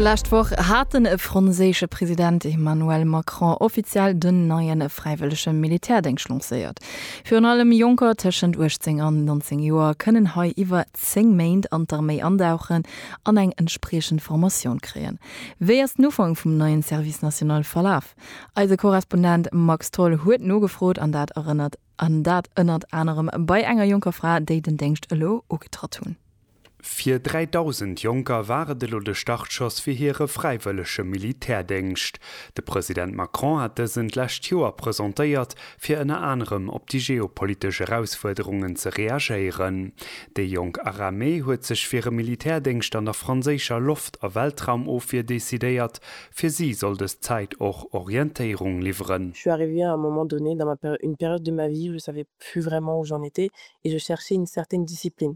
D'lescht Woch hat den franséische President Emmanuel Macron offiziell den neien fräiwëllege Militärdéngscht lancéiert. Virun allem Jonker tëschent 18 an 19 Joer kënnen hei iwwer 10 Méint an d'Arméi andauchen an eng entspriechend Formatioun kréien. Wéi ass den Ufank vum neien Service national verlaf? Eise Korrespondent Max Tholl huet nogefrot an dat erënnert an dat ënnert anerem bei enger jonker Fra, déi den Déngscht elo ugetratt hunn. Fir 3.000 Jonker war et elo de Startschoss fir hire fräiwëllege Militärdéngscht. De President Macron hat dësen d'lescht Joer presentéiert, fir ënner anerem op déi geopolitesch Erausfuerderungen ze reagéieren. Déi jonk Aramee huet sech fir e Militärdéngscht an der franséischer Loft a Weltraumofwier decidéiert. Fir si soll dës Zäit och Orientéierung liwweren. Je suis arrivé à un moment donné dans ma une période de ma vie où je savais plus vraiment où j'en étais et je cherchais une certaine discipline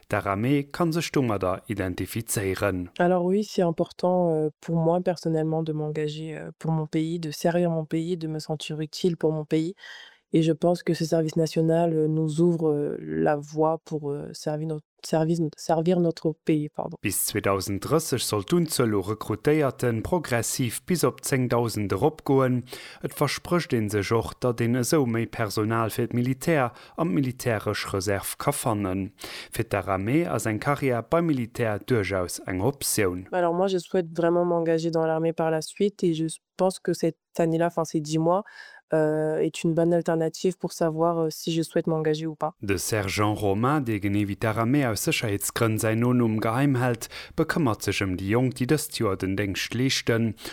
D'Aramee kann sech domadder identifizéieren. Alors oui, c'est important pour moi personnellement de m'engager pour mon pays, de servir mon pays, de me sentir utile pour mon pays et je pense que ce service national nous ouvre la voie pour servir notre pays. Bis 2030 soll d'Unzuel u Rekrutéierte progressiv bis op 10.000 eropgoen. Et versprécht ee sech och, datt een esou méi Personal fir d'Militär an d'militäresch Reserv ka fannen. Fir d'Aramee ass eng Carrière beim Militär duerchaus eng Optioun. Alors moi je souhaite vraiment m'engager dans l'armée par la suite et je pense que cette année là, enfin ces dix mois, est une bonne alternative pour savoir si je souhaite m'engager ou pas. De Sergent Romain, dee genee wéi d'Aramee aus Sécherheetsgrënn säin Nonumm geheim hält, bekëmmert sech ëm déi Jonk, déi dëst Joer den Déngscht leeschten.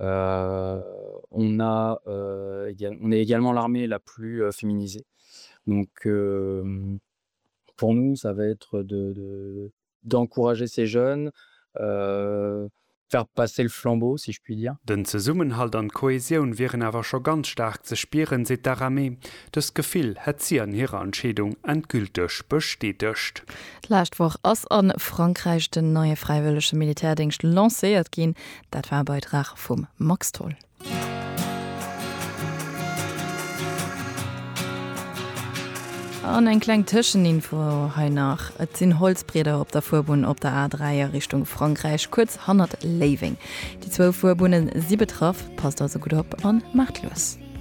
On a on est également l'armée la plus féminisée donc pour nous ça va être de d'encourager ces jeunes faire passer le flambeau si je puis dire. Den Zesummenhalt an d'Kohäsioun wieren awer scho ganz staark ze spieren, seet d'Aramé. Dëst Gefill hätt si an hirer Entscheedung endgülteg bestätegt. D'lescht Woch ass a Frankräich den neie fräiwëllege Militärdéngscht lancéiert ginn. Dat war e Beitrag vum Max Tholl. An eng kleng Tëscheninfo hei nach, Et sinn Holzbrieder op der Fuerbunn op der A3 a Richtung Frankräich, kuerz hannert Léiweng. Déi zwou Fuerbunnen si betraff, passt also gutt op an maacht lues.